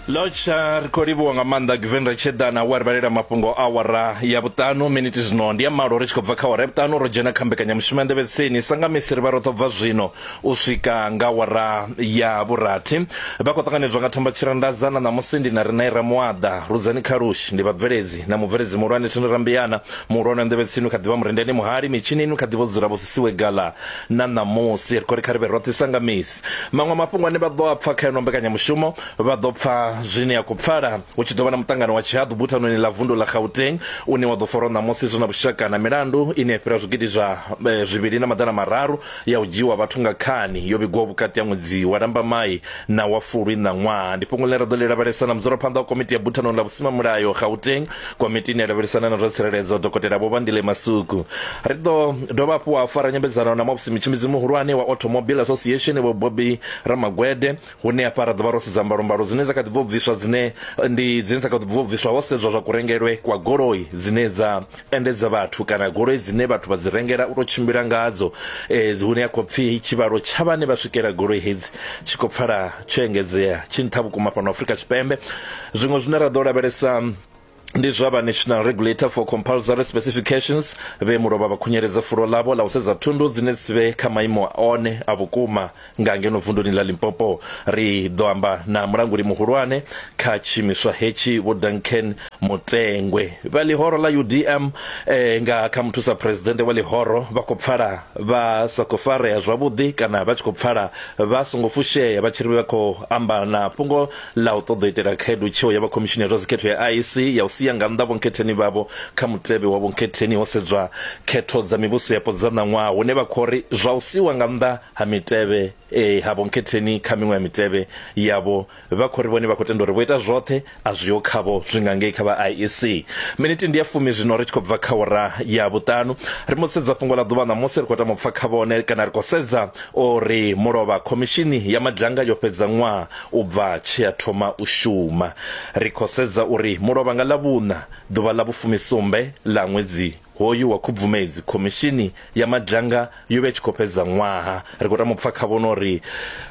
lotsha ri khou livhuwa nga maanḓa giveni ri tsheḓana wa ri vhalela mafhungo a awara ya vhuṱanu miniti zwino ndi ya malo ri tshi khou bva kha awara ya vhuṱanu ro dzhena kha mbekanyamushumo ya nḓevhetseni sa nga misi ri vha ro ḓo bva zwino u swika nga awara ya vhurathi vha khou ṱanganedzwa nga thamba tshirandaza na ṋamusi ndi na ri na ira muaḓa rudzani khalushi ndi vhabveledzi na mubveledzi muhulwane thini rambiana muhulwane wa nḓevhetsini kha ḓivha murendeni muhali mitshinini kha ḓivha dzula vho sisiwe gala Na ṋamusi, ri khou ri kha ri vhe roṱhe sa nga misi. Maṅwe a mafhungo ane vha ḓo a pfa kha yeneyo mbekanyamushumo, vha ḓo pfa zwine ya khou pfala hu tshi ḓo vha na muṱangano wa tshihaḓu buthanoni ḽa vundu ḽa Gauteng une wa ḓo farwa ṋamusi zwi na vhushaka na milandu ine ya fhira zwigidi zwa zwivhili na maḓana mararu ya u dzhiiwa vhathu nga khani yo vhigwaho vhukati ha ṅwedzi wa Lambamai na wa Fulwi ṋaṅwaha. Ndi fhungo ḽine ra ḓo ḽi lavhelesa na mudzulaphanḓa wa komiti ya buthanoni ḽa vhusimamulayo Gauteng komitini ya lavhelisana na zwa tsireledzo dokotela vho vandile masuku ri ḓo dovha hafhu wa fara nyambedzano na mobs mitshimbidzi muhulwane wa automobile association vho bobi ramagwede hune hafha ra ḓovha ro sedza mbalombalo dzine dza kha ḓi bvo bviswa dzine ndi dzine dza kha ḓi bvo bviswa ho sedzwa zwa kurengelwe kwa goloi dzine dza endedza vhathu kana goloi dzine vhathu vha dzi rengela u tou tshimbila ngadzo e, hune ya khou pfi tshivhalo tsha vhane vha swikela goloi hedzi tshi khou pfala tsho engedzea tshi nṱha vhukuma fhano afrika tshipembe zwiṅwe zwine ra ḓo lavhelesa ndi zwa vha national regulator for compulsory specifications vhe mulovha vha khunyeledza fulo ḽavho ḽa u sedza thundu dzine dzi vhe kha maimo one a vhukuma nga ngeno vunduni ḽa limpopo ri ḓo amba na mulanguli muhulwane kha tshiimiswa hetshi vho duncan mutengwe vha ḽihoro ḽa udm eh, nga kha muthusa presidennde wa ḽihoro vha khou pfala vha sa khou farea zwavhuḓi kana vha tshi khou pfala vha songo fushea vha tshi ri vha khou amba na fhungo ḽa u ṱoḓa u itela khaedu tsheo ya vha khomishini ya zwa dzikhetho ya IEC ya u sia nga nnḓa vhonkhetheni vhavho kha mutevhe wa vhonkhetheni ho sedzwa khetho dza mivhuso yapo dza ṋaṅwaha hune vha khou ri zwa u siwa nga nnḓa ha mitevhe eh, ha vhonkhetheni kha miṅwe ya mitevhe yavho Vha khou ri vhone vha khou tenda uri vho ita zwoṱhe a zwiho khavho zwi nga ngei kha vha IEC. Minithi ndi ya fumi zwino ri tshi khou bva kha awara ya vhuṱanu. Ri mbo ḓi sedza fhungo ḽa ḓuvha ṋamusi ri khou tama u pfa kha vhone kana ri khou sedza o ri mulovha. Khomishini ya Madzhanga yo fhedza ṅwaha u bva tshe ya thoma u shuma. Ri khou sedza uri mulovha nga Ḽavhuṋa ḓuvha ḽa vhufumi sumbe ḽa ṅwedzi hoyu wa Khubvumedzi khomishini ya Madzhanga yo vha i tshi khou fhedza ṅwaha. Ri khou tama u pfa khavho no ri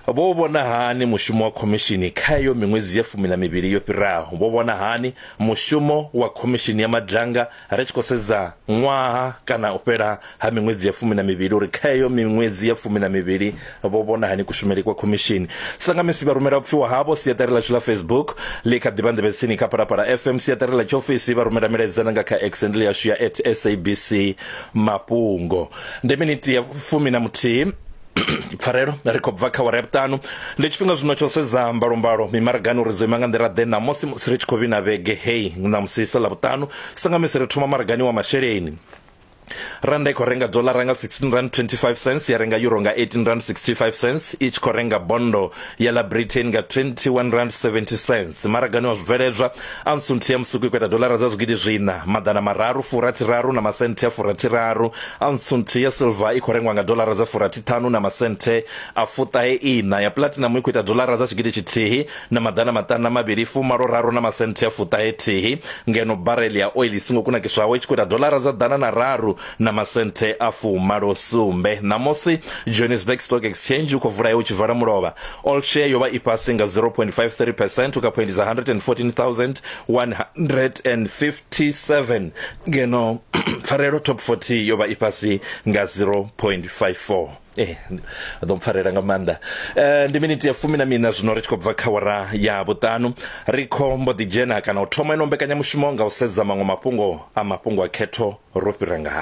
vho vhona hani mushumo wa khomishini kha heyo miṅwedzi ya fumi na mivhili yo fhiraho. Vho vhona hani mushumo wa khomishini ya madanga ri tshi khou sedza ṅwaha kana u fhela ha miṅwedzi ya fumi na mivhili uri kha heyo miṅwedzi ya fumi na mivhili vho vhona hani kushumeli kwa khomishini. Sangamisi vha rumela vhupfiwa havho siaṱari ḽashu ḽa Facebook ḽi kha ḓivha nḓevhetsini kha Phalaphala FM, siaṱari ḽa tshiofisi vha rumela milaedza na nga kha accent ḽi yashu ya at SABC Mafhungo. ndi miniti ya fumi na muthihi pfarelo ri khou bva kha wara ya vhuṱanu ndi tshifhinga zwino tsho sedza mbalombalo mimaragani uri dzo ima nga nḓila ḓe ṋamusi musi ri tshi khou vhina vhege heyi ṋamusi sa ḽa vhuṱanu sangamisi ri thoma maragani wa masheleni randa i khou renga dolara nga 16 rand 25 cents ya renga euro nga 18 rand 65 cents i tshi khou renga bondo ya ḽa britain nga 21 rand 70 cents maragani wa zwibveledzwa Aunsunthi ya musuku i khou ita dolara dza zwigidi zwiṋa, maḓana mararu, furathiraru na masenthe a furathiraru. Aunsunthi ya silva i khou rengwa nga dolara dza furathiṱhanu na masenthe a fuṱahe-iṋa. Ya pulatinamu i khou ita dolara dza tshigidi tshithihi na maḓana maṱanu na mavhili, fumalo-raru na masenthe a fuṱahe-thihi, ngeno barele ya oiḽi i songo kunakiswaho i tshi khou ita dolara dza ḓana na raru na masenthe a fumalo sumbe ṋamusi johannesburg stock exchange u khou vula ya u tshi vala mulovha all share yo vha i fhasi nga 0.53 percent u kha phoindi dza 114157 ngeno pfarelo top 40 yo vha i fhasi nga 0.54 Eh, ḓo mpfarela nga maanḓa eh, ndi miniti ya fumi na mina zwino ri tshi khou bva kha wara ya vhuṱanu ri kho mbo ḓi dzhena kana u thoma ino mbekanyamushumo nga u sedza maṅwe mafhungo a mafhungo a khetho ro fhira ngaha